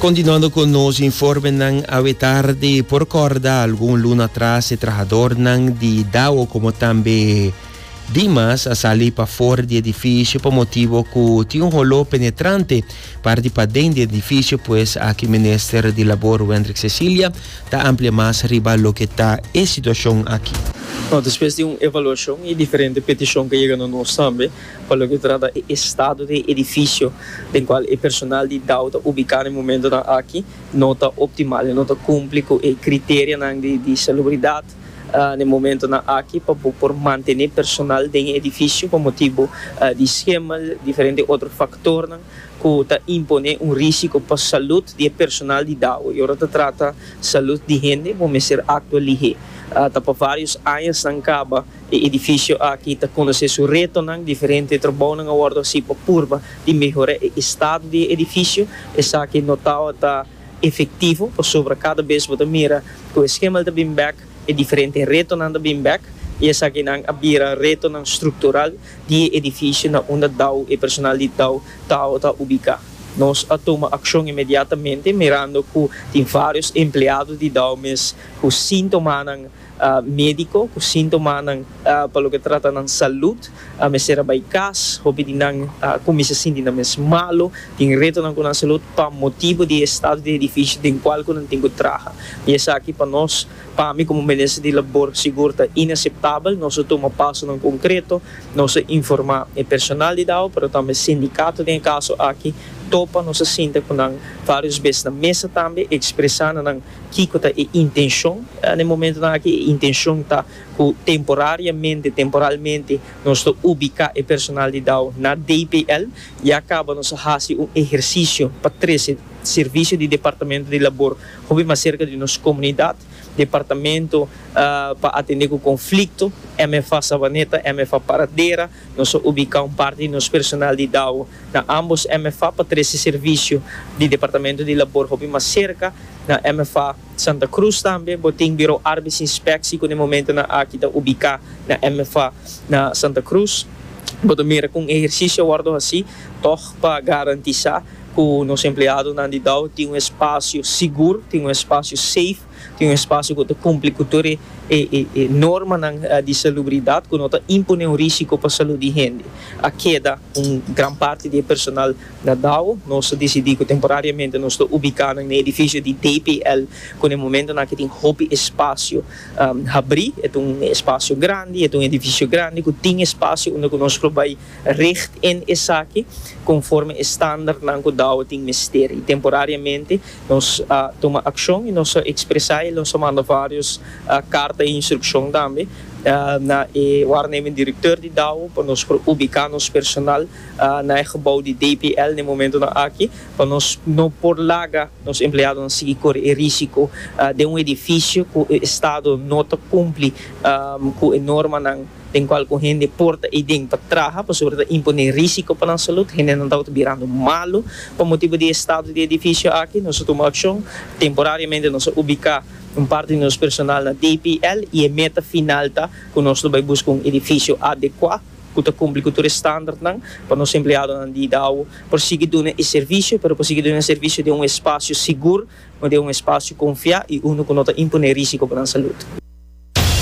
Continuando cu nos informenan awe tarde, por corda algun luna atras e trahadornan di Dao como tambe Dimas a sali pafor di edificio pa motibo cu tin un holo penetrante par di paden di edificio pues aki Minister di Labor Wendrick Cecilia ta amplia mas riba loke ta e situacion aki. Despues di un evaluacion y diferente peticion cu a yega na nos tambe. Pa loke trata e estado di e edifisio den cual e personal di Dow ta ubica na e momentonan aki no ta optimal y no ta cumpli cu e criterianan di salubridad na e momentonan aki pa bo por mantene personal den e edifisio pa motibo di schemel y diferente otro factornan cu ta impone un risico pa salud di e personal di Dow y ora ta trata salud di hende bo mester actua lihe ta pa varios añasnan caba E edifisio aki ta konosé su retonan diferente. E trabounan a wòrdu hasí pa purba di mehorá e estado di e edifisio. Esaki no tawa ta efektivo pasobra kada bes bo ta mira ku e skemal ta bin bèk, e diferente retonan ta bin bèk i esakinan a bira retonan struktural di e edifisio na unda Dau, e personal di Dau, tawa ta ubiká. Nos a tuma akshon inmediatamente mirando ku tin vários empleado di Dau mes ku síntomanan. Médiko ku síntomanan pa loke trata nan salùt a mester a bai kas. Hopi di nan kuminsá sinti nan mes malu, tin retonan ku nan salùt pa motibu di e stado di edifisio den kual ku nan tin ku traha. I esaki pa nos, pa mi komo Minister di Labor sigur ta inaseptabel. Nos a tuma pasonan konkreto, nos a informá e personal di Dao, pero tambe e sindikato den e kaso aki. Topa nos a sinta ku nan vários bes na mesa tambe, ekspresá na nan. Kiko ta e intenshon? Na e momentunan aki e intenshon ta ku temporariamente, temporalmente, nos ta ubiká e personal di Dao na DPL. Ya kaba nos a hasi un ehersisio pa trese servisio di Departamento di Labor hopi mas serka di nos komunidat, Departamento pa Atendé ku Konflikto, MFA Sabaneta, MFA Paradera. Nos a ubiká un parti di nos personal di Dao. Na ambos MFA pa trece servicio di Departamento di Labor hopi mas cerca. Na MFA Santa Cruz tambe bo tin Bureau Arbeidsinspectie cu na e momento nan aki ta ubica na MFA na Santa Cruz. Bo ta mira cu un ehercicio a wordo haci tog pa garantisa cu nos empleadonan di Dow tin un espacio sigur, tin un espacio safe. tin un espasio ku ta kumpli ku tur e e normanan di salubridat ku no ta impon'é un risiko pa salud di hende. A keda un gran parti di e personal na Dao. Nos a disidí ku temporariamente nos ta ubiká nan na edifisio di DPL ku na e momentonan aki tin hopi espasio habrí. E ta un espasio grandi, e ta un edifisio grandi ku tin espasio unda ku nos lo bai richt en esaki konforme e standarnan ku Dao tin mester. I temporariamente. Nos a tuma akshon i nos a ekspresá el. Nos a manda vários karta di instrukshon tambe na e wárnemen direktò di Dao pa nos por ubiká nos personal na e gebou di DPL na e momentunan aki pa nos no por laga nos empleadonan sigui kore e rísiko den un edifisio ku e estado no ta kumpli ku e normanan. den cual cu hende por ta iden pa traha pasobra ta impone risico pa nan salud. Hendenan tabata birando malu. Pa motibu di e estado di e edificio aki, nos a tuma accion. Temporariamente nos a ubica un parti di nos personal na DPL y e meta final ta cu nos lo bay busca un edificio adecua cu ta cumpli cu tur e standardnan pa nos empleadonan di Idao por sigui duna e servicio pero por sigui duna e servicio den un espacio sigur, den un espacio confia y unu cu no ta impone risico pa nan salud.